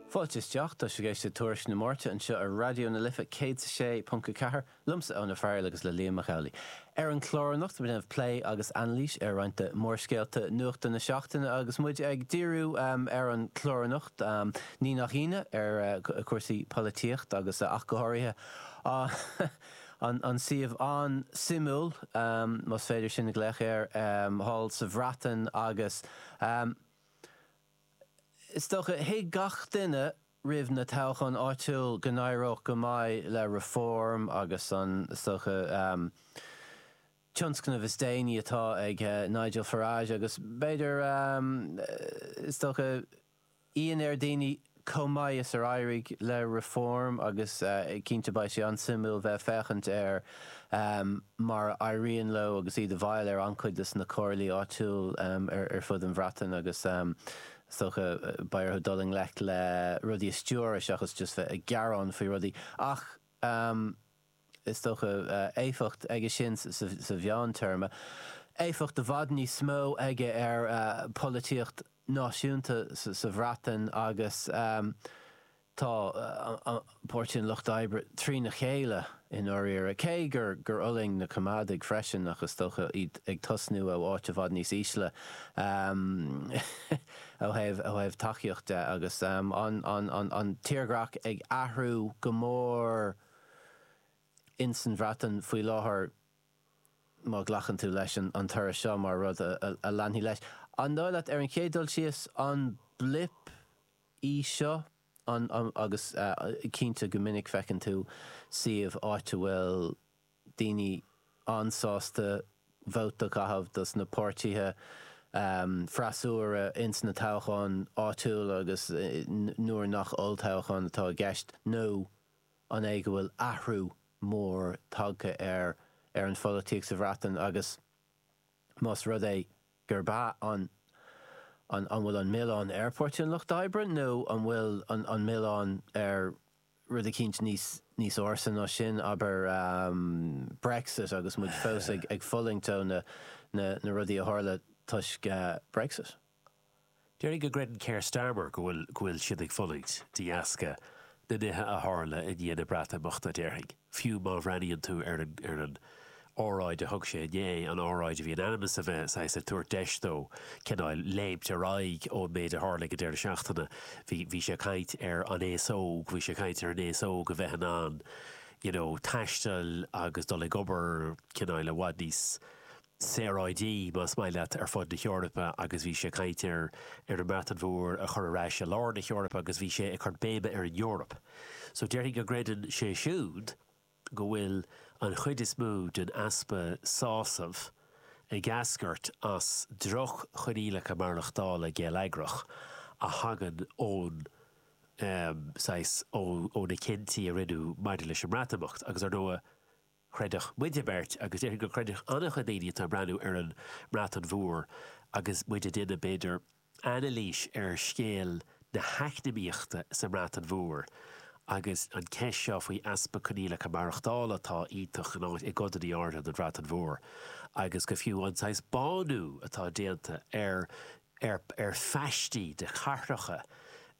Fáilte isteach, tá sibh ag éisteacht le Tuairisc na Máirte anseo ar Raidió na Life 106.4, liomsa Eoin Farrell agus le Liam Mac Amhlaigh. Ar an chlár anocht beimid ag déanamh plé agus anailís ar roinnt de mhórscéalta nuachta na seachtaine agus muid ag díriú ar an chlár anocht, ní nach ionadh, ar chúrsaí polaitíocht agus ach go háirithe an suíomh an-suimiúil, más féidir sin a ghlaoch air, thall sa Bhreatain agus. Is dócha, thuig gach duine roimh na toghcháin áitiúil go n-éireodh go maith le Reform agus an, is dócha, tionscnamh is déanaí atá ag Nigel Farage agus b'fhéidir, is dócha, ionadh ar dhaoine. chomh maith is ar éirigh le Reform agus cinnte beidh sé an-suimiúil bheith ag féachaint ar mar a éiríonn leo agus iad i bhfeighil ar an-chuid de na comhairlí áitiúil ar fud an Bhreatain agus is dócha beidh orthu dul i ngleic le rudaí a stiúradh seachas just bheith ag gearán faoi rudaí ach is dócha, éifeacht aige sin sa mheántéarma, éifeacht i bhfad níos mó aige ar pholaitíocht náisiúnta sa Bhreatain agus tá Páirtí an Lucht Oibre trína chéile i ndáiríre, cé gur fhulaing na Coimeádaigh freisin ach is dócha iad ag tosnú ó áit i bhfad níos ísle ó thaobh tacaíochta de agus an tírdhreach ag athrú go mór. ins an Bhreatain faoi láthair, má ghlacann tú leis an toradh seo mar rud a leanfaidh leis. An dóigh leat, ar an chéad dul síos, an blip í seo? An, agus cinnte go minic feiceann tú suíomh, áit a bhfuil daoine an-sásta vóta a chaitheamh dos na páirtithe freasúra ins na toghcháin áitiúla agus nuair nach olltoghchán atá i gceist nó, an é go bhfuil athrú mór tagtha ar ar an pholaitíocht sa Bhreatain agus más rud é gurb ea, an an an bhfuil an milleán ar Pháirtí an Lucht Oibre nó an bhfuil an an milleán ar rud eicínt níos níos ársa ná sin, abair, Brexit agus muid fós ag ag fulaingt ó na na na rudaí a tharla toisc Brexit? Déarfainn go gcreideann Keir Starmer go bhfuil go bhfuil siad ag fulaingt de dheasca na nithe a tharla i ndiaidh na Breatimeachta, déarfainn, fiú má bhreathnaíonn tú ar an ar an óráid a thug sé inné, an óráid a bhí in ainm is a bheith saghas ag tabhairt deis dó cineál léimt ar aghaidh ón méid a tharla ag an deireadh seachtaine. Bhí bhí sé ag caint ar an aos óg, bhí sé ag caint ar an aos óg a bheith in ann you know taisteal agus dul ag obair cineál i bhfad níos saoráidí, más maith leat, ar fud na hEorpa agus bhí sé ag caint ar an mBreatain Mhór a chur ar ais i lár na hEorpa agus bhí sé ag cur béime ar an Eoraip. So déarfainn go gcreideann sé siúd go bhfuil an chuid is mó den easpa sásamh ag eascairt as droch-choinníollacha maireachtála geilleagrach a thagann ón, saghas, ó na cinntí a rinneadh maidir leis an mBreatimeacht agus ar ndóigh, chreidfeadh muide beirt, agus déarfainn go gcreidfeadh an-chuid daoine atá ag breathnú ar an mBreatain Mhór agus muid ag déanamh, b'fhéidir, anailís ar scéal na heacnamaíochta sa mBreatain Mhór agus an ceist seo faoi easpa coinníollacha maireachtála atá iontach i gcodanna áirithe den Bhreatain Mhór agus go fiú an saghas bánú atá déanta ar ar ar phaistí de chathracha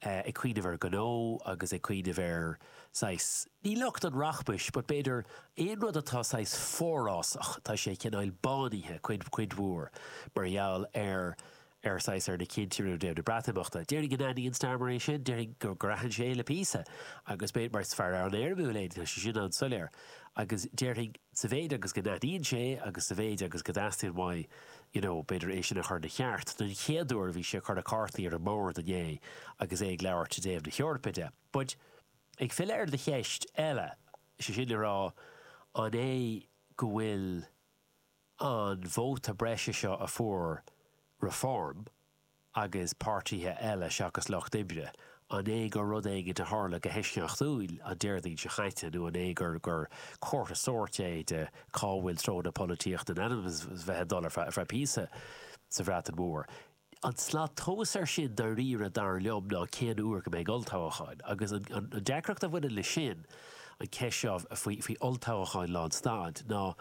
ag cuimhneamh ar ghnó agus ag cuimhneamh ar saghas, ní lucht an rachmais, but b'fhéidir aon rud atá saghas forásach, tá sé cineáil bánaithe cuid cuid mhór mar gheall ar ar saghas ar na cinntí a rinneadh i dtaobh na Breatimeachta. Déarfainn go n-aithníonn Starmer é sin, déarfainn gur gur aithin sé é le píosa agus b'fhéidir mar is fear an-éirimiúil é go bhfuil sé sin an-soiléir agus déarfainn sa mhéid agus go n-aithníonn sé agus sa mhéid agus go dteastaíonn uaidh you know b'fhéidir é sin a chur ina cheart. Don chéad uair bhí sé ag cur na cártaí ar an mbord inné agus é ag labhairt i dtaobh na hEorpa de. But ag filleadh ar do cheist eile, is é sin le rá an é go bhfuil an vóta breise seo a fuair Reform, agus páirtithe eile seachas lucht oibre, an é gur rud éigin a tharla go heisceachtúil an Déardaoin seo caite nó an é gur gur comhartha sóirt é de cá bhfuil treo na polaitíochta in ainm is bheith ag dul ar feadh píosa sa Bhreatain Mhór? An tslat tomhais air sin dáiríre dar liom ná cén uair go mbeidh olltoghcháin agus an deacracht a bhaineann leis sin, an cheist seo faoi olltoghcháin le an staid, ná.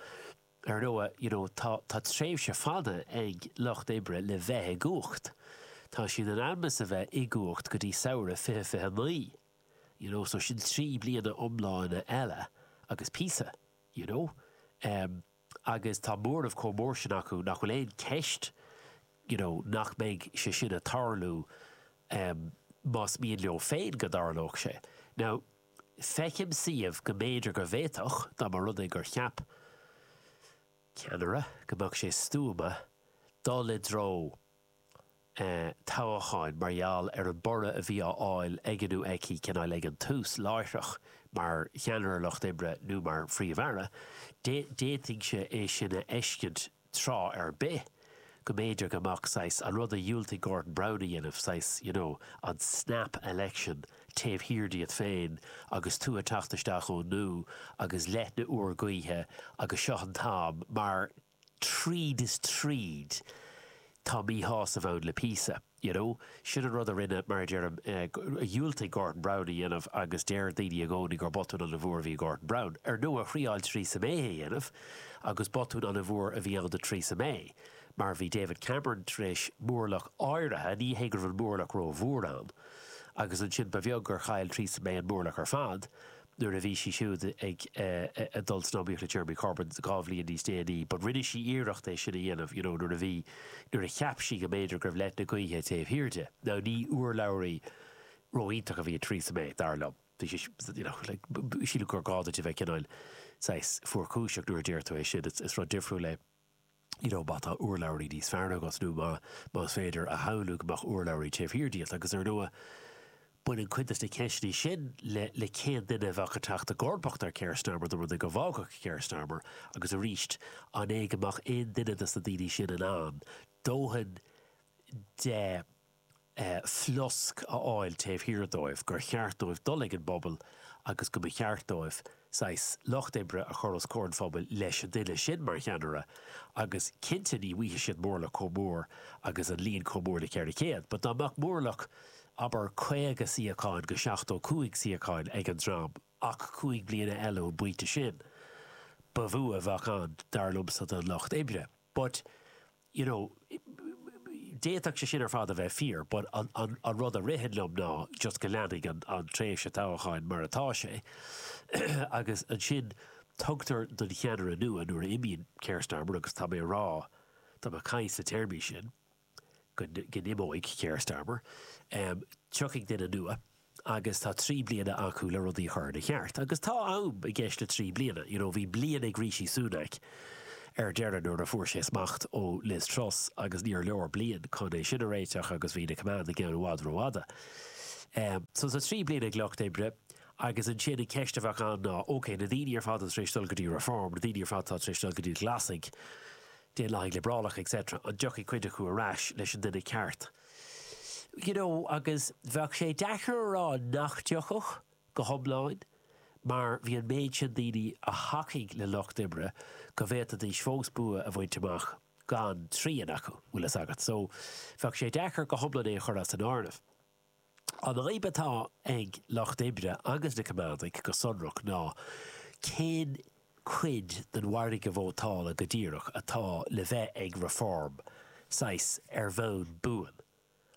Ar ndóigh, you know, tá, tá tréimhse fada ag Lucht Oibre le bheith i gcumhacht. Tá siad in ainm is a bheith i gcumhacht go dtí Samhradh fiche fiche naoi, you know, so sin trí bliana iomlána eile agus píosa, you know. Em, agus tá móramh chomh mór sin acu nach bhfuil aon cheist, you know, nach mbeidh sé sin a' tarlú, em, más mian leo féin go dtarlódh sé. Now. Feicim suíomh go mb'fhéidir go bhféadfadh, dá mba rud é gur cheap ceannaire go mbeadh sé stuama dul i dtreo toghcháin mar gheall ar an borradh a bhí á fháil aige nó aici, cineál, ag an tús, láithreach mar cheannaire Lucht Oibre nó mar Phríomh-Aire, d'fhéadfainnse é sin a fheiscint. tráth ar bith, go mb'fhéidir go mbeadh saghas, an rud a dhiúltaigh Gordon Brown a dhéanamh, saghas, you know, an snap election taobh thiar díot féin agus tú ag teacht isteach as an nua agus leoithne úr gaoithe agus seo an t-am mar tríd is tríd tá míshásamh ann le píosa. You know, sin an rud a rinne, mar a deirim, a dhiúltaigh Gordon Brown a dhéanamh agus deir daoine i gcónaí gur botún an-mhór a bhí ag Gordon Brown. Ar ndóigh, thriáil Theresa May é a dhéanamh agus botún an-mhór a bhí ann do Theresa May mar bhí David Cameron tar éis móramh áirithe, ní hé go raibh an móramh ró-mhór ann, agus ansin ba bheag gur chaill Theresa May an móramh ar fad, nuair a bhí sí siúd ag dul san iomaíocht le Jeremy Corbyn dhá bhliain níos déanaí but rinne sí iarracht é sin a dhéanamh you know nuair a bhí nuair a cheap sí go mb'fhéidir go raibh leoithne gaoithe taobh thiar di. Now ní urlabhraí ró-iontach a bhí i Theresa May dar liom. Bhí sí you know like sílim gur gá duit a bheith cineál saghas fuarchúiseach nuair a deir tú é sin it's it's rud difriúil é. Má tá urlabhraí níos fearr agat nó más féidir a shamhlú go mbeadh urlabhraí taobh thiar díot agus ar ndóigh baineann cuid de na ceisteanna sin le le cén duine a bheadh ag teacht i gcomharbacht ar Keir Starmer dá mbeadh dá bhfágfadh Keir Starmer agus arís an é go mbeadh aon duine de sna daoine sin in ann dóthain de flosc a fháil taobh thiar dóibh, gur cheart dóibh dul ag an bpobal agus go mba cheart dóibh saghas lucht oibre a chur os comhair an phobail leis an duine sin mar cheannaire agus cinnte ní bhfaighidh siad móramh chomh mór agus an líon chomh mór le 400 but dá mbeadh móramh abair 50 suíocháin go 75 suíocháin ag an dream ach 5 bliana eile ón bpointe sin ba bhua a bheadh ann dar liomsa don lucht oibre. But, you know, d'fhéadfadh sé sin ar fad a bheith fíor but an rud a ritheann liom ná just go leanfaidh an tréimhse toghcháin mar atá sé agus ansin tugtar don cheannaire nua nuair a imíonn Keir Starmer agus tá mé a rá, tá mé ag caint sna téarmaí sin. go n-imeoidh Keir Starmer, tiocfaidh duine nua agus tá trí bliana acu le rudaí a chur ina cheart. Agus tá am i gceist le trí bliana. You know, bhí bliain ag Rishi Sunak ar deireadh nuair a fuair sé smacht ó Liz Truss agus níor leor bliain chun é sin a réiteach agus bhí na Coimeádaigh ann i bhfad rófhada. So tá trí bliana ag Lucht Oibre agus ansin an cheist a bheadh ann ná, okay, na daoine ar fad atá tar éis dul go dtí Reform, na daoine ar fad atá tar éis dul go dtí na Glasaigh, Daonlathaithe Liobrálacha etc. an dtiocfaidh cuid acu ar ais leis an duine ceart? You know, agus bheadh sé deacair a rá nach dtiocfadh, go hiomlán, mar bhí an méid sin daoine a thacaigh le lucht oibre go bhféadfaidís fós bua a bhaint amach gan trian acu, bhfuil fhios agat. So, bheadh sé deacair go hiomlán é a chur as an áireamh. An fhadhb atá ag Lucht Oibre agus na Coimeádaigh go sonrach ná cén cuid den mhargadh vótála go díreach atá le bheith ag Reform, saghas ar bhonn buan,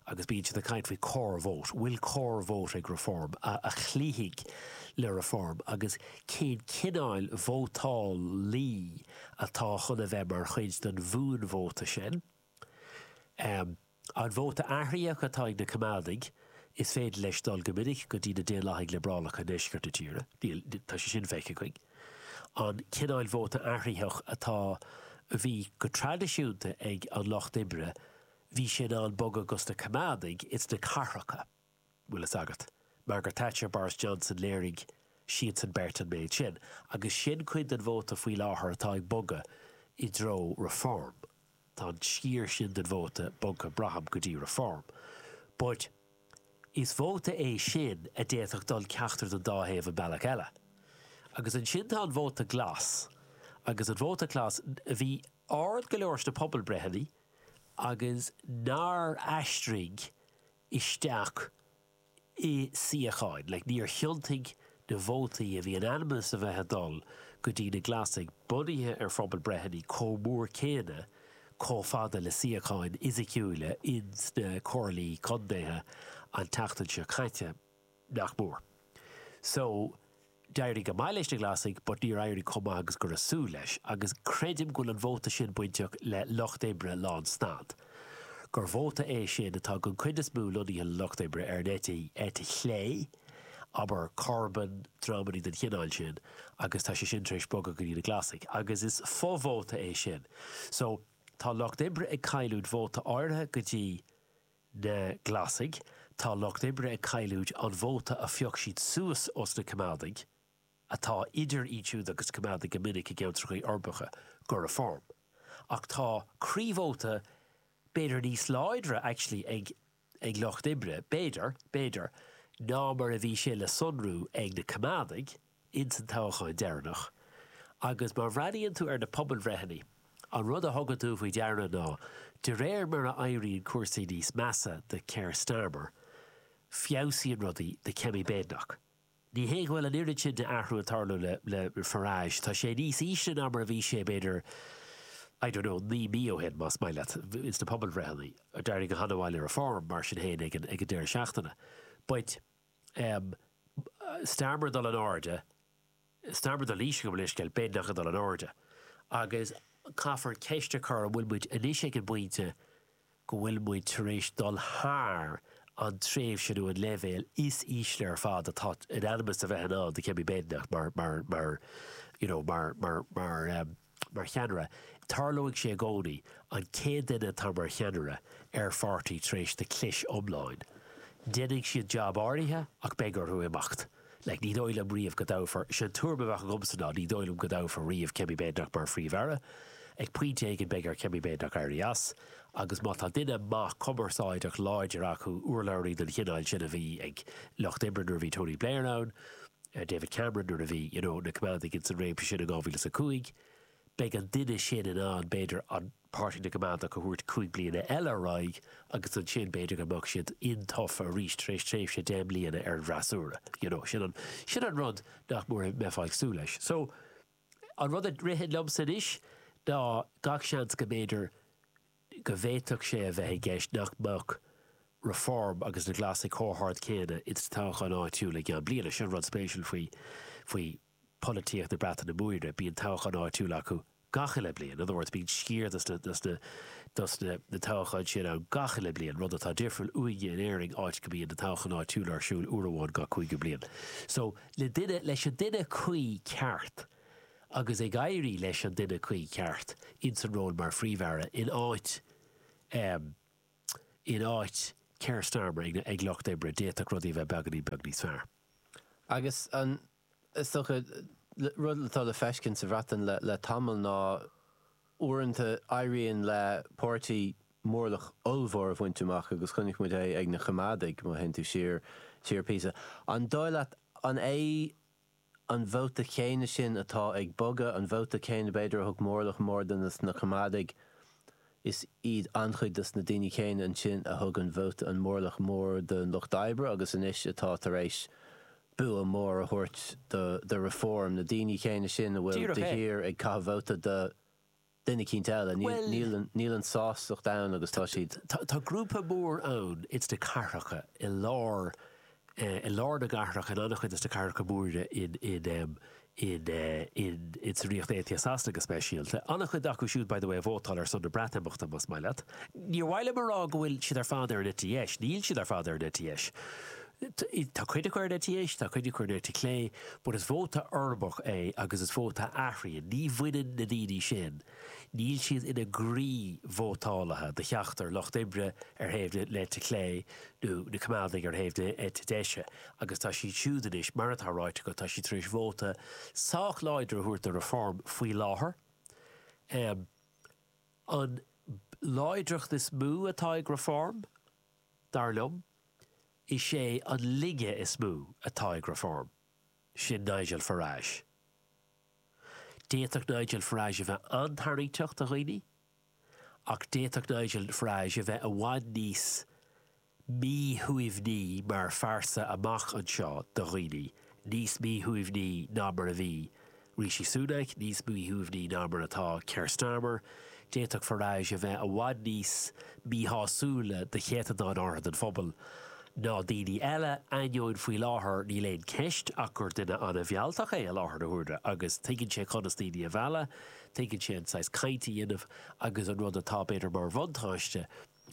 agus bíonn siad ag caint faoi core vote, bhfuil core vote ag Reform a chloífidh le Reform agus cén cineáil vótálaí atá chun a bheith mar chuid den bhuanvóta sin? An vóta athraitheach atá ag na Coimeádaigh, is féidir leis dul go minic go dtí na Daonlathaigh Liobrálacha i ndeisceart na tíre. Tá sé sin feicthe againn. An cineál vóta athraitheach atá, a bhí go traidisiúnta ag an Lucht Oibre, bhí sé in ann bogadh go sna Coimeádaigh ins na cathracha. bhfuil fhios agat. Margaret Thatcher, Boris Johnson, léirigh siadsan beirt an méid sin. Agus sin cuid den vóta faoi láthair atá ag bogadh i dtreo Reform. Tá an sciar sin den vóta bogtha, braithim, go dtí Reform. But is vóta é sin a d'fhéadfadh dul ceachtar den dá thaobh an bealach eile. Agus ansin tá an vóta glas. Agus an vóta glas, a bhí ard go leor sna pobalbreitheanna agus nár aistrigh isteach i suíocháin. like níor thiontaigh na vótaí a bhí in ainm is a bheith a dul go dtí na Glasaigh bunaithe ar phobalbreitheanna chomh mór céanna chomh fada le suíocháin fhisiciúila ins na comhairlí contaetha an tseachtain seo caite. nach mór. So, d'éirigh go maith leis na Glasaigh but níor éirigh chomh maith agus go raibh súil leis agus creidim go bhfuil an vóta sin bainteach le Lucht Oibre lán stad, gur vóta é sin atá don chuid is mó lonnaithe le Lucht Oibre ar an eite, eite chlé, abair Corbyn, dreamannaí den chineál sin agus tá sé sin tar éis bogadh go dtí na Glasaigh agus is fo-vóta é sin. So, tá Lucht Oibre ag cailliúint vóta áirithe go dtí. Na Glasaigh, tá Lucht Oibre ag cailliúint an vóta a phioc siad suas ós na Coimeádaigh, atá idir iad siúd agus Coimeádaigh go minic i gceantrachaí uirbeacha, go Reform. Ach tá croívóta b'fhéidir níos láidre actually ag ag Lucht Oibre, b'fhéidir, b'fhéidir, ná mar a bhí sé le sonrú ag na Coimeádaigh, ins an toghacháin deireannach agus má bhreathnaíonn tú ar na pobalbhreitheanna an rud a thugann tú faoi deara ná de réir mar a éiríonn cúrsaí níos measa do Keir Starmer feabhsaíonn rudaí do Kemi Badenoch. Ní hé go bhfuil an oiread sin d'athrú ag tarlú le le Farage, tá sé níos ísle ná mar a bhí sé b'fhéidir I don't know naoi mí ó shin más maith leat, ins na pobalbhreitheanna. D'éirigh go hana mhaith le Reform mar sin féin ag an ag an deireadh seachtaine but. M, Starmer ag dul in airde, Starmer ag dul in ísle go bhfuil a fhios scéal, Badenoch ag dul in airde agus caithfear ceist a chur an bhfuil muid anois ag an bpointe go bhfuil muid tar éis dul thar an tréimhse nó an leibhéal is ísle ar fad atá in ainm is a bheith in ann do Kemi Badenoch mar mar mar you know mar mar mar mar cheannaire, tarlóidh sé i gcónaí, an chéad duine atá mar cheannaire ar pháirtí tar éis do chlis iomlán, déanfaidh siad jab áirithe ach beidh orthu imeacht. Like, ní dóigh liom riamh go dtoghfar, sin an tuairim a bheadh agamsa ná ní dóigh liom go dtoghfar riamh Kemi Badenoch mar Phríomh-Aire. Ag pointe éigin beidh ar Kemi Badenoch éirí as agus má tá duine maith cumarsáideach láidir acu, urlabhraí den chineál sin a bhí ag Lucht Oibre nuair a bhí Tony Blair ann, David Cameron nuair a bhí you know na Coimeádaigh ins an réimse sin in dhá mhíle is a cúig. Beidh an duine sin in ann, b'fhéidir, an Páirtí na gCoimeádach a thabhairt cúig bliana eile ar aghaidh agus ansin b'fhéidir go mbeadh siad intofa arís tar éis tréimhse deich mbliana ar an bhfreasúra. You know sin an sin an rud nach mór a mbeifeá ag súil leis. So an rud a ritheann liomsa anois ná gach seans go mb'fhéidir go bhféadfadh sé a bheith i gceist nach mbeadh Reform agus na Glasaigh chomh hard céanna ins na toghcháin áitiúla i gceann bliana. Sin an rud spéisiúil faoi pholaitíocht na Breataine Móire, bíonn toghcháin áitiúla acu gach uile bliain. In other words, bíonn sciar dos na toghcháin sin ann gach uile bliain, rud atá difriúil uainne in Éirinn áit go mbíonn na toghcháin áitiúla ar siúl uair amháin gach cúigiú bliain. So, le leis an duine cuí ceart, agus ag éirí leis an duine cuí ceart ins an ról mar Phríomh-Aire in áit in áit Keir Starmer ag ag Lucht Oibre, d'fhéadfadh rudaí a bheith beagáinín beag níos fearr. Agus is dócha, rud atá le feiscint sa Bhreatain le le tamall ná uaireanta éiríonn le páirtí mórlach ollmhór a bhaint amach agus chonaic muid é ag na Coimeádaigh, má théann tú siar siar píosa. An dóigh leat, an é, an vóta céanna sin atá ag bogadh, an vóta céanna b'fhéidir a thug mórlach mór dos na Coimeádaigh, is iad an-chuid de na daoine céanna ansin a thug an vóta an mórlach mór don Lucht Oibre agus anois atá tar éis bua mór a thabhairt do Reform, na daoine céanna sin a bhfuil, Díreach é, de shíor ag caitheamh vóta do. duine éicint eile. Níl an sástacht ann agus tá siad. Tá grúpa mór ann ins na cathracha i lár, i lár na gcathrach, in an-chuid de na cathracha móra in, in, in, in, in sa Ríocht Aontaithe Sasana go speisialta. An-chuid acu siúd, by the way, a vótáil ar son na Breatimeachta, más maith leat. Níor mhaith liom a rá go bhfuil siad ar fad ar an eite dheis. Níl siad ar fad ar an eite dheis. Tá cuid acu ar an eite dheis, tá cuid acu ar an eite chlé, but is vóta foirmeach é agus is vóta a athraíonn. Ní bhaineann na daoine sin, níl siad ina gcroí-vótálaithe do cheachtar Lucht Oibre ar thaobh na eite chlé nó na Coimeádaigh ar thaobh na eite deise agus tá siad siúd anois, mar atá ráite agat, tá siad tar éis vóta sách láidir a thabhairt do Reform faoi láthair. An láidreacht is mó atá ag Reform Dar liom, is é an laige is mó atá ag Reform, sin Nigel Farage. D'fhéadfadh Nigel Farage a bheith an-tarraingteach do dhaoine, ach d'fhéadfadh Nigel Farage a bheith i bhfad níos míshuaimhní mar phearsa amach anseo do dhaoine, níos míshuaimhní ná mar a bhí Rishi Sunak níos míshuaimhní ná mar atá Keir Starmer, d'fhéadfadh Farage a bheith i bhfad níos míshásúla do chéatadán áirithe den phobal ná daoine eile, ainneoin faoi láthair níl aon cheist ach gur duine an-mhealltach é i láthair na huaire agus tuigeann sé conas daoine a mhealladh, tuigeann sé an saghas caint a dhéanamh agus an rud atá b'fhéidir mar bhuntáiste,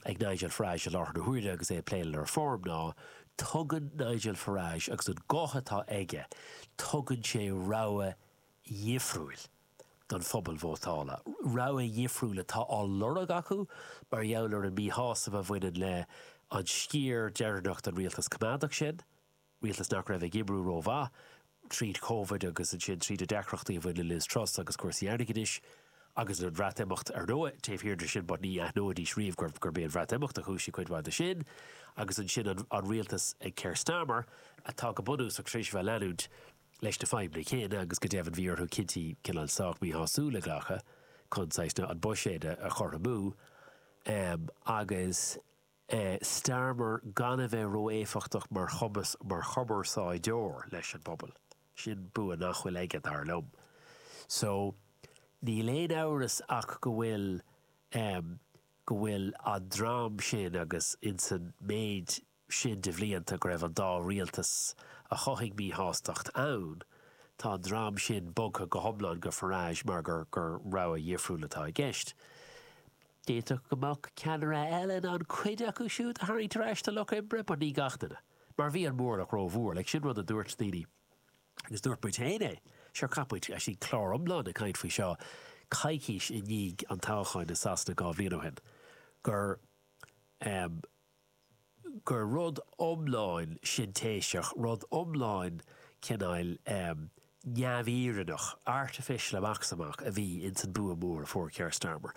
ag Nigel Farage i láthair na huaire agus é ag plé le Reform ná, tugann Nigel Farage, agus an guth atá aige, tugann sé rogha dhifriúil don phobal vótála, rogha dhifriúil atá á lorg acu mar gheall ar an míshásamh a bhaineann leis an sciar deireanach den rialtas coimeádach sin. rialtas nach raibh ag oibriú rómhaith, tríd Covid agus ansin tríd na deacrachtaí a bhain le Liz Truss agus cúrsaí airgeadais, agus an Bhreatimeacht. Ar ndóigh, taobh thiar de sin, but ní aithneoidís riamh gurb é an Bhreatimeacht a chúisigh cuid mhaith de sin. Agus ansin an rialtas ag Keir Starmer, atá go bunúsach tar éis a bheith ag leanúint leis na fadhbanna céanna agus go deimhin bhí orthu cinntí cineál sách míshásúil a ghlacadh chun saghas an buiséad a chothromú agus Starmer gan a bheith ró-éifeachtach mar chumarsáideoir leis an bpobal. Sin bua nach bhfuil aige, dar liom. So, níl aon amhras ach go bhfuil go bhfuil an dream sin agus insan méid sin de bhlianta go raibh an dá rialtas a chothaigh míshástacht ann, tá an dream sin bogtha go hiomlán go Farage mar gur gur rogha dhifriúil atá i gceist. D'fhéadfadh go mbeadh ceannaire eile in ann cuid acu siúd a tharraingt ar ais sa lucht oibre, but ní gach duine, mar bhí an móramh rómhór, like sin rud a dúirt daoine agus dúirt muid féin é, sure chaith muid actually clár iomlán ag caint faoi seo coicís i ndiaidh an toghcháin i Sasana dhá bhliain ó shin, gur, em. gur rud iomlán sintéiseach, rud iomlán cineál neamhfhírinneach, artificial amach is amach, a bhí ins an bua mór a fuair Keir Starmer.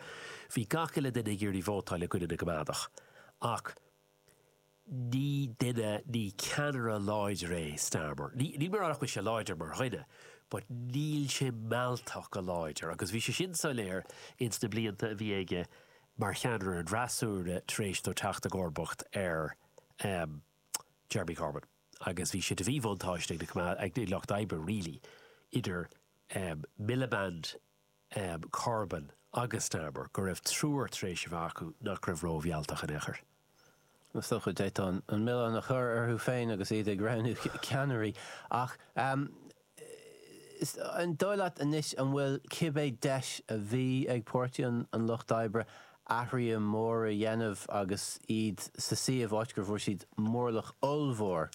Bhí gach uile duine ag iarraidh vótáil i gcoinne na gCoimeádach, ach ní duine, ní ceannaire láidir é Starmer. Níl mé a rá nach bhfuil sé láidir mar dhuine, but níl sé mealltach ná láidir, agus bhí sé sin soiléir ins na blianta a bhí aige mar cheannaire an fhreasúra tar éis dó teacht i gcomharbacht ar Jeremy Corbyn agus bhí sé de mhíbhuntáiste ag na, ag Lucht Oibre really, idir Miliband, Corbyn agus Starmer go raibh triúr tar éis a bheith acu nach raibh rómhealltach in aon chor. Is dócha go bhféadfá an milleán a chur orthu féin agus iad ag roghnú ceannairí ach an dóigh leat anois an bhfuil cibé deis a bhí ag Páirtí an Lucht Oibre athruithe móra a dhéanamh agus iad sa suíomh áit gur bhfuair siad móramh ollmhór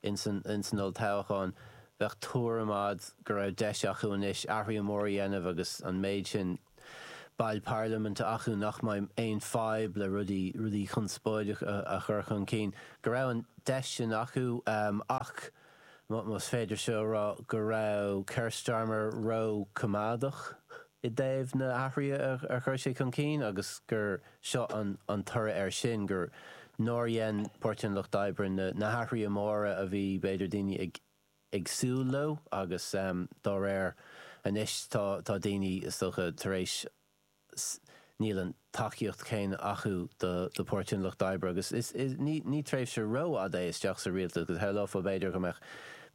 Ins an olltoghchán, bheadh tuairim a'd go raibh deis acu anois athruithe móra dhéanamh agus an méid sin baill parlaiminte acu nach mbeidh aon fadhb le rudaí, rudaí conspóideacha a chur chun cinn, go raibh an deis sin acu ach, más féidir seo a rá, go raibh Keir Starmer ró-choimeádach. i dtaobh na hathruithe a chuir sé chun cinn agus gur seo an toradh air sin, gur nár dhein Páirtí an Lucht Oibre na hathruithe móra a bhí, b'fhéidir, daoine ag súil leo agus dá réir anois tá daoine, is dócha, tar éis, níl an tacaíocht chéanna acu do Pháirtí an Lucht Oibre agus ní tréimhse rófhada é isteach sa rialtas agus shamhlófá, b'fhéidir, go mbeadh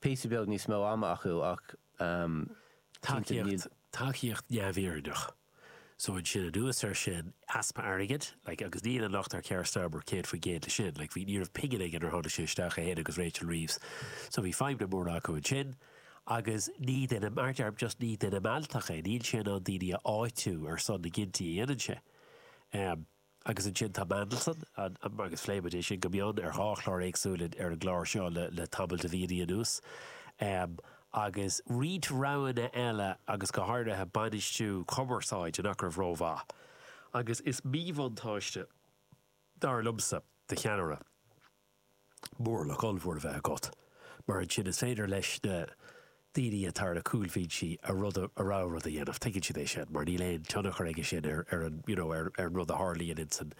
píosa beag níos mó ama acu ach. tacaíocht, tacaíocht neamhfhírinneach. So ansin anuas air sin, easpa airgid, like agus níl an locht ar Keir Starmer 100% faoi sin, like bhí, ní raibh pingin aige nuair a tháinig sé isteach, é féin agus Rachel Reeves, so bhí fadhbanna móra acu ansin agus ní duine, mar a deir, just ní duine mealltach é, níl sé in ann daoine a áitiú ar son na gcinntí a dhéanann sé. Um. agus ansin tá Mandelson, an, an, agus phléimid é sin go mion ar dhá chlár éagsúil ar an gclár seo le tamall de mhíonnaí anuas, em, agus roinnt roghanna eile agus go háirithe bainistiú cumarsáide nach raibh rómhaith agus is míbhuntáiste, dar liomsa, do cheannaire. móramh ollmhór a bheith agat, mar ansin is féidir leis na daoine atá ar na cúlbhinsí a rud a, a rogha rud a dhéanamh, tuigeann siad é sin, mar níl aon tionchar aige sin ar, ar an, you know, ar, ar an rud a tharlaíonn in san,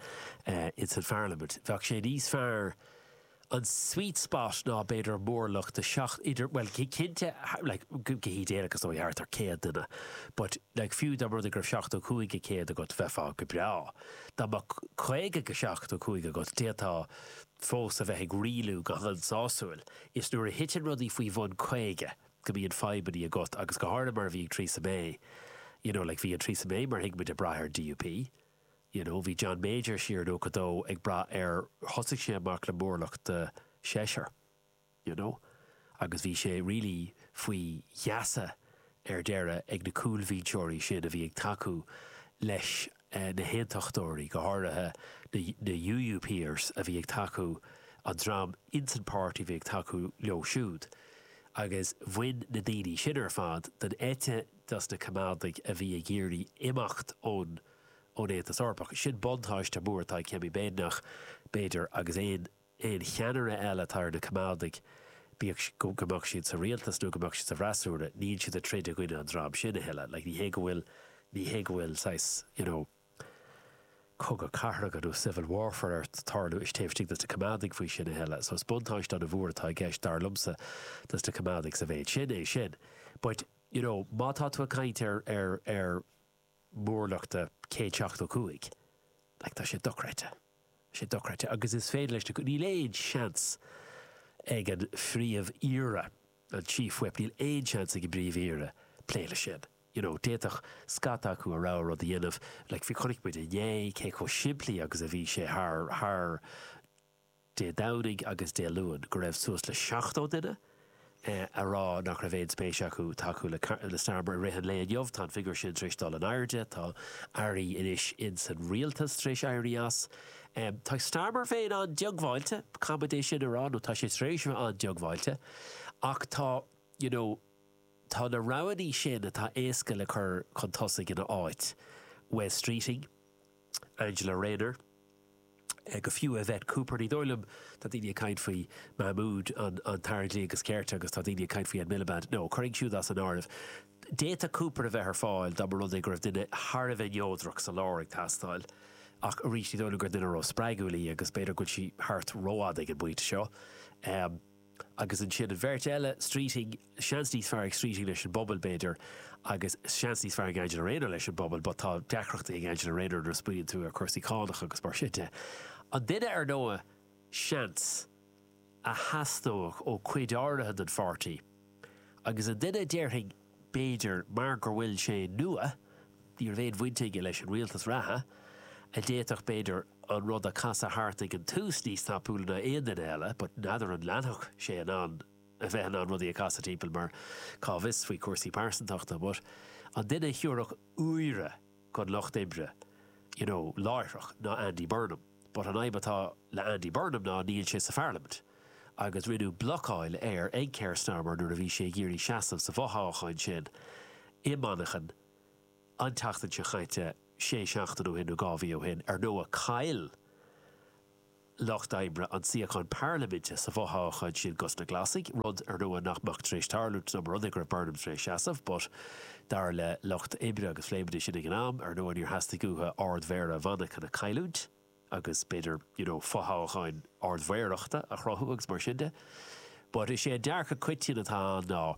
in san Pharlaimint. Bheadh sé níos fearr, an sweet spot ná b'fhéidir móramh de sheacht, idir, bhuel cinnte, like, go, go hídéalach is dóigh thart ar céad duine, but like fiú dá mba rud é go raibh seachtó cúig go céad agat bheifeá go breá. Dá mbeadh caoga go seachtó cúig agat d'fhéadfá. fós a bheith ag rialú go han-sásúil. Is nuair a thiteann rudaí faoi bhun 50 go mbíonn fadhbannaí agat agus go háirithe mar a bhí ag Theresa May you know like bhí an Theresa May mar a thuig muid ag braith ar an DUP you know bhí John Major siar in 92 ag braith ar thosaigh sé amach le mórlach de sheisear. you know agus bhí sé really faoi gheasa ar deireadh ag na cúlbhinseoirí sin a bhí ag tacú leis na haontachtóirí, go háirithe na UUPers a bhí ag tacú, an dream insan páirtí a bhí ag tacú leo siúd. Agus bhain na daoine sin ar fad den eite dos na Coimeádaigh a bhí ag iarraidh imeacht ón Aontas Eorpach. Sin buntáiste mór atá ag Kemi Badenoch, b'fhéidir, agus aon aon cheannaire eile atá ar na Coimeádaigh, bíodh go mbeadh siad sa rialtas nó go mbeadh siad sa bhfreasúra, níl siad ag troid i gcoinne an dream sin a thuilleadh. Like, ní hé go bhfuil, ní hé go bhfuil saghas, you know, cogadh cathartha nó civil warfare ag tarlú taobh istigh dos na Coimeádaigh faoi sin a thuilleadh. So is buntáiste ana-mhór atá i gceist, dar liomsa, dos na Coimeádaigh sa mhéid sin, é sin. But, you know, má tá tú ag caint ar, ar, ar, mhórlachta 175. Like, tá sé dochreidte. Tá sé dochreidte. Agus is féidir leis na, níl aon seans ag an phríomh-aoire, an chief whip, níl aon seans ag an bpríomh-aoire plé le sin. You know, d'fhéadfadh scata acu a rogha rud a dhéanamh. Like féach, chonaic muid inné cé chomh simplí agus a bhí sé thar, thar, Dé Domhnaigh agus Dé Luain, go raibh suas le 70 duine ag rá nach raibh aon spéis acu tacú le Starmer i rith an lae inniu. Tá an figiúr sin tar éis dul in airde. Tá airí anois insan rialtas tar éis éirí as. Tá Starmer féin an-diongbháilte, caithfimid é sin a rá, nó tá sé tar éis a bheith an-diongbháilte, ach tá, you know, tá na roghannaí sin atá éasca le cur chun tosaigh ina áit, Wes Streeting, Angela Rayner, go fiú Yvette Cooper. Ní dóigh liom, tá daoine ag caint faoi Mahmood an tAire Dlí agus Cirt agus tá daoine ag caint faoi Ed Miliband. No, cuir iad siúd as an áireamh. D'fhéadfadh Cooper a bheith ar fáil dá mba rud é go raibh duine thar a bheith neodrach sa lár ag teastáil ach arís ní dóigh liom gur duine ró-spreagúil í agus b'fhéidir go bhfuil sí thart rófhada ag an bpointe seo. Agus ansin an bheirt eile, Streeting, seans níos fearr ag Streeting leis an bpobal, b'fhéidir, agus seans níos fearr ag Angela Rayner leis an bpobal, but tá deacrachtaí ag Angela Rayner nuair a smaoiníonn tú ar chúrsaí cánach agus mar sin de. An duine, ar ndóigh, seans, a theastódh ó chuid áirithe den pháirtí agus an duine a déarfainn b'fhéidir mar go bhfuil sé nua, ní raibh aon bhaint aige leis an rialtas reatha, a d'fhéadfadh b'fhéidir an rud a chasadh thart ag an tús níos tapúla ná aon duine eile but n'fheadar an leanfadh sé in ann a bheith in ann rudaí a chasadh timpeall mar cá bhfios faoi chúrsaí pearsantachta but an duine a thabharfadh úire don lucht oibre you know láithreach ná Andy Burnham. But an fhadhb atá le Andy Burnham ná níl sé sa Pharlaimint, agus rinneadh blocáil air ag Keir Starmer nuair a bhí sé ag iarraidh seasamh sa bhfothoghchán sin i Manchain an tseachtain seo chaite, sé seachtaine ó shin nó dhá mhí ó shin, ar ndóigh. Chaill Lucht Oibre an suíochán Parlaiminte sa bhfothoghchán sin dos na Glasaigh, rud, ar ndóigh, nach mbeadh tar éis tarlú, dá mba rud é go raibh Burnham tar éis seasamh, but. Dar le Lucht Oibre agus phlé muid é sin ag an am, ar ndóigh, níor theastaigh uathu Ard-Mhéara Mhanchain a chailliúint agus, b'fhéidir, you know fothoghchán Ard-Mhéarachta a chruthú agus mar sin de. But is é an dearcadh coitianta atá ann ná,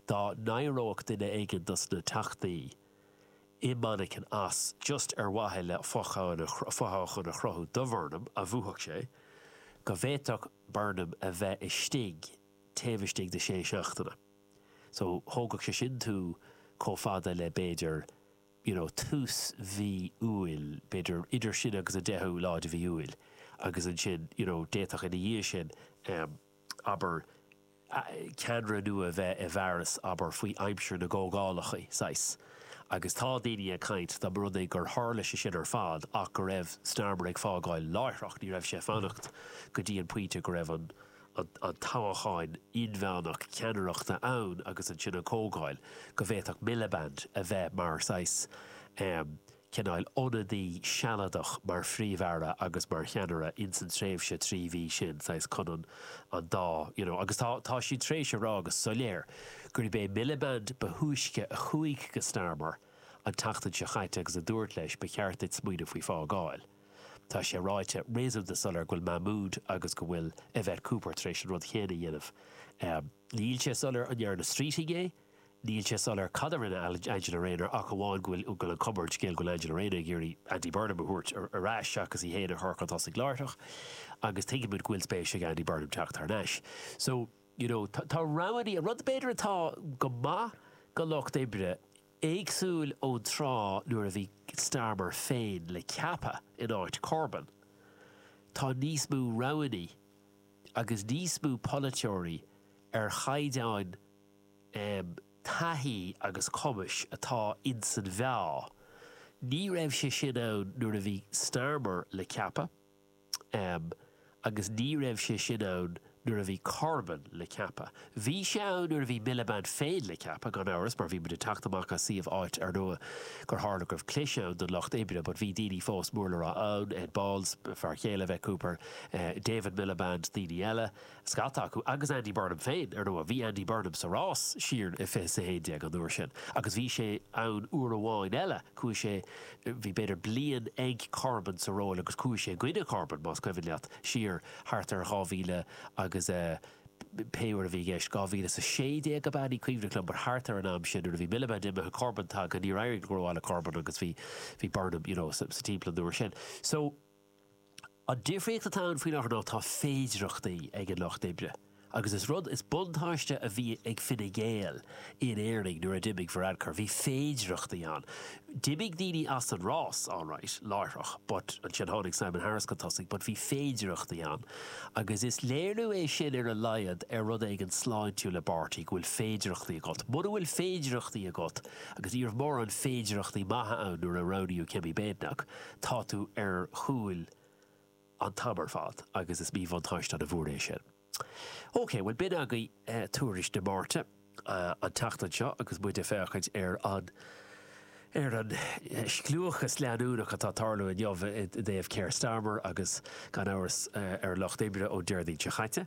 dá n-éireodh duine éigin dos na Teachtaí i Manchain as just ar mhaithe le fothoghchán a chruthú do Bhurnham a bhuafadh sé, go bhféadfadh Burnham a bheith istigh taobh istigh de shé seachtaine. So, thógfadh sé sin tú chomh fada le b'fhéidir, you know, tús mhí Iúil, b'fhéidir idir sin agus an deichiú lá de mhí Iúil agus ansin, you know, d'fhéadfadh ina dhiaidh sin, em, abair, ceannaire nua a bheith i bhfearas, abair, faoi aimsir na gcomhdhálacha, saghas. Agus tá daoine ag caint, dá mba rud é gur tharla sé sin ar fad ach go raibh Starmer ag fágáil láithreach, ní raibh sé ag fanacht go dtí an pointe go raibh an, an toghchán inmheánach ceannaireachta ann agus ansin an Chomhdháil, go bhféadfadh Miliband a bheith mar saghas, cineál, ionadaí sealadach mar Phríomh-Aire agus mar cheannaire ins an tréimhse trí mhí sin, saghas chun an an dá you know agus tá tá siad tar éis a rá go soiléir gurb é Miliband ba thúisce a chuaigh go Starmer an tseachtain seo chaite agus a dúirt leis ba cheart duit smaoineamh faoi fhágáil. Tá sé ráite réasúnta soiléir go bhfuil Mahmood agus go bhfuil Yvette Cooper tar éis an rud chéanna a dhéanamh. Níl sé soiléir an ndearna Streeting é, níl sé soiléir cad a rinne Angela Rayner ach amháin go bhfuil an cuma ar an scéal go bhfuil Angela Rayner ag iarraidh Andy Burnham a thabhairt ar ais seachas í féin a chur chun tosaigh láithreach agus tuigimid go bhfuil spéis ag Andy Burnham teacht thar n-ais. So, you know, tá roghanna, an rud b'fhéidir atá go maith don Lucht Oibre, Éagsúil ón tráth nuair a bhí Starmer féin le ceapadh in áit Corbyn, tá níos mó roghanna agus níos mó polaiteoirí ar chaighdeán taithí agus cumais atá insan bhfeá. Ní raibh sé sin ann nuair a bhí Starmer le ceapadh. Em, agus ní raibh sé sin ann nuair a bhí Corbyn le ceapadh. Bhí sé ann nuair a bhí Miliband féin le ceapadh, gan amhras, mar bhí muid ag teacht amach as suíomh áit, ar ndóigh, gur tharla go raibh clis ann don Lucht Oibre, but bhí daoine fós mór le rá ann, Ed Balls, fear chéile Yvette Cooper, David Miliband, daoine eile. scata acu agus Andy Burnham féin. Ar ndóigh, bhí Andy Burnham sa rás siar i fiche's a haon déag an uair sin agus bhí sé ann uair amháin eile, chuaigh sé, bhí b'fhéidir bliain ag Corbyn sa ról agus chuaigh sé i gcoinne Corbyn, más cuimhin leat, siar thart ar 2000 agus pé uair a bhí i gceist, 2016 ab ea, ní cuimhin liom, but thart ar an am san nuair a bhí Miliband imithe, Corbyn tagtha, níor éirigh go rómhaith le Corbyn agus bhí, bhí Burnham, you know, sa timpeall an uair sin. So. An difríocht atá ann faoi láthair ná tá féidearthachtaí ag an Lucht Oibre, agus is rud, is buntáiste a bhí ag Fine Gael in Éirinn nuair a d'imigh Varadkar, bhí féidearthachtaí ann. D'imigh daoine as an rás, alright, láithreach, but, ansin tháinig Simon Harris chun tosaigh, but bhí féidearthachtaí ann. Agus is léiriú é sin ar a laghad ar rud éigin sláintiúil i bpáirtí, go bhfuil féidearthachtaí agat. Mura bhfuil féidearthachtaí agat, agus ní raibh mórán féidearthachtaí maithe ann nuair a roghnaíodh Kemi Badenoch, Tá tú ar chúil an t-am ar fad agus is míbhuntáiste ana mhór é sin. OK, bhuel b'in agaibh tuairisc na Máirt an tseachtain seo agus muid ag féachaint ar an ar an scliúchas leanúnach atá ag tarlú inniu i dtaobh Keir Starmer agus gan amhras ar an Lucht Oibre ón Déardaoin seo chaite.